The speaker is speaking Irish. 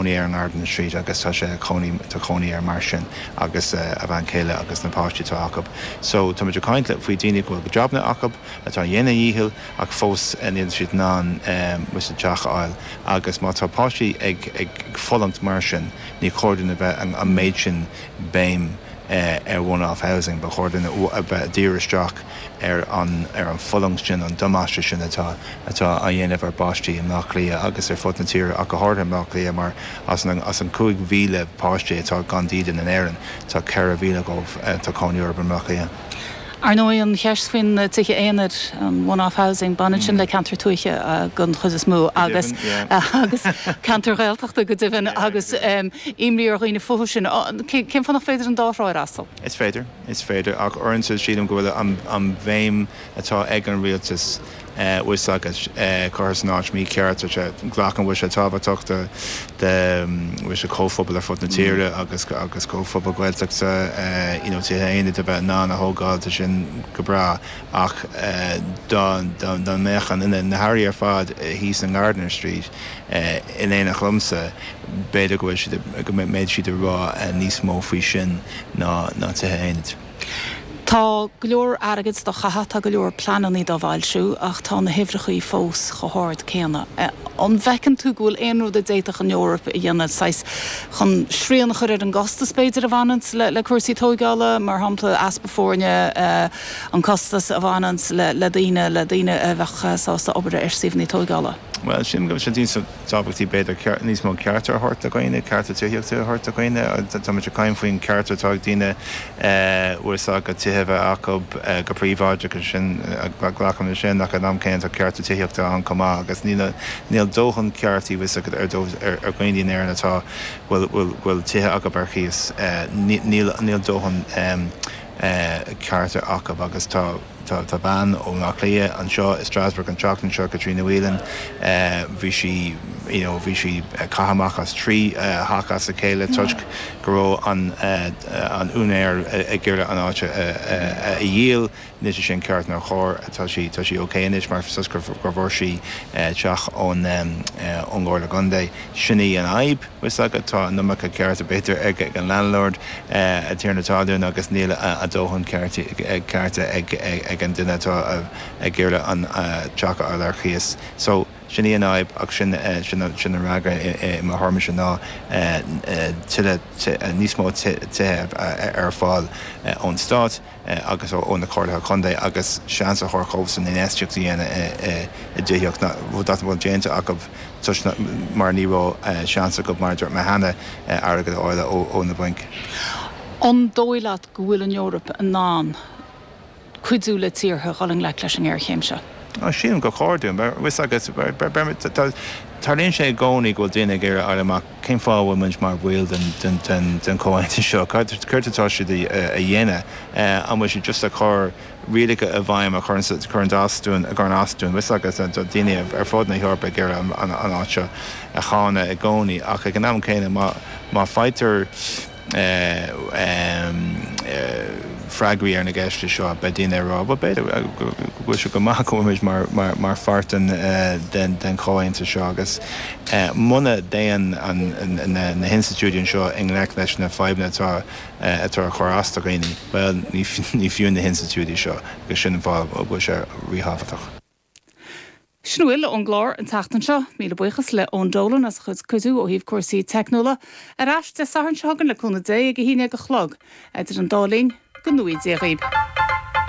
cónaí ar an nGardiner Street agus tá sé cónaí, tá cónaí orthu mar sin agus a bhean chéile agus na páistí atá acu. So tá muid ag caint le, faoi daoine go bhfuil jabanna acu, atá ag déanamh a dhícheall ach fós níl siad in ann fiú teach a fháil agus má tá páistí ag, ag, ag fulaingt mar sin níor chóir dúinn a bheith an, an méid sin béim ar one-off housing, ba chóir dúinn a bheith ag díriú isteach. ar an bhfulaingt sin, an damáiste sin atá á dhéanamh ar pháistí i mBleá Cliath agus ar fud na tíre ach go háirithe i mBleá Cliath mar as an 5,000 páiste atá gan dídean in Éirinn, tá 4,000 dhóibh tá cónaí orthu i mBleá Cliath. Ar ndóigh, an cheist faoi na tithe aonair, an one-off housing, baineann sin le ceantair tuaithe den chuid is mó agus ceantair Ghaeltachta go deimhin agus imní ar dhaoine fúthu sin. Cén fáth nach féidir an dá thrá a fhreastal? Is féidir. is féidir, ach uaireanta sílim go bhfuil an bhéim atá ag an rialtas fhios agat curtha san áit mícheart, bhfuil sé, glacaim go bhfuil sé tábhachtach do, bhfuil a fhios agat, comhphobal ar fud na tíre agus comhphobal Gaeltachta, you know, tithe aonair a bheith in ann a thógáil, tá sin go breá, ach dá mbeadh duine de na hairí ar fad thíos in Gardiner Street in éineacht liomsa, b'fhéidir go bhfuil siad, go mbeidh siad ag rá níos mó faoi sin. ná na tithe aonair. Tá go leor airgid dá chaitheamh, tá go leor pleanannaí dá bhfoilsiú ach tá na huimhreachaí fós chomh hard céanna. An bhfeiceann tú go bhfuil aon rud a d'fhéadfadh an Eoraip a dhéanamh, saghas, chun srian a chur ar an gcostas, b'fhéidir, a bhaineanns le cúrsaí tógála, mar shampla, easpa foirne, an costas a bhaineanns le daoine, le daoine a bheadh sásta obair ar suíomhannaí tógála? Bhuel, sílim go bhfuil sé tábhachtach b'fhéidir níos mó cearta a thabhairt do dhaoine, cearta tithíochta a thabhairt do dhaoine. Táimid ag caint faoin gceart atá ag daoine bhfuil a fhios agat, tithe a bheith acu go príobháideach agus sin, glacaim le sin, ach in am céanna tá cearta tithíochta ann chomh maith agus níl dóthain ceartaí, bhfuil a fhios agat, ar ndóigh ar dhaoine in Éirinn atá, bhfuil tithe acu ar chíos, níl dóthain cearta acu agus tá. Tá bean ó Bhleá Cliath anseo i Strasbourg an tseachtain seo, Caitríona Whelan. Bhí sí, you know, bhí sí caite amach as trí theach as a chéile toisc go raibh an an úinéir ag iarraidh an áit a dhíol. Anois níl sé sin ceart nár chóir, tá sí tá sí ok anois mar fhios agat gur bhfuair sí teach ón ón gComhairle Contae. Sin í an fhadhb. bhfuil a fhios agat, tá an iomarca cearta, b'fhéidir, ag an landlord, an tiarna talún, agus níl a dóthain cearta ag an duine atá ag iarraidh an teach a fháil ar chíos. So, sin í an fhadhb ach sin an freagra i mo thuairmise ná tuilleadh, níos mó tithe a bheith ar fáil ón stát. agus ó na comhairlí contae agus seans a thabhairt dhóibh sin infheistíocht a dhéanamh i dtithíocht nach bhfuil déanta acu toisc mar ní raibh seans acu, mar a dúirt mé cheana, airgead a fháil ó na bainc. An dóigh leat go bhfuil an Eoraip in ann cuidiú le tíortha a dhul i ngleic leis an ngéarchéim seo? Sílim gur cóir. Tá fhios agat, tarlaíonn sé i gcónaí go bhfuil daoine ag iarraidh fáil amach. Cén fáth a bhfuil muid mar bhaill den chomhaontas seo? Céard atá siad a dhéanamh? An bhfuil siad just ag cur rialacha i bhfeidhm a chuireann as dúinn, a chuireann as dúinn, bhfios agat, do dhaoine ar fud na hEorpa ag iarraidh an áit seo a cháineadh i gcónaí ach ag an am céanna má faightear freagraí ar na gceisteanna seo, beidh daoine ag rá, bhuel, b'fhéidir go bhfuil sé go maith go bhfuil muid mar pháirt den chomhaontas seo agus muna dtéann na hinstitiúidí anseo i ngleic leis na fadhbanna atá ag cur as do dhaoine, bhuel, ní fiú na hinstitiúidí seo agus sin an fáth a bhfuil sé ríthábhachtach. Sin a bhfuil ón gclár an tseachtain seo. Míle buíochas le Eoin Dolan as a chuid cuidiú ó thaobh cúrsaí teicniúla. Ar ais Dé Sathairn seo chugainn le cúnamh Dé ag a haon dhéag a chlog. Idir an dá linn, go ngnóthaí Dia dhaoib.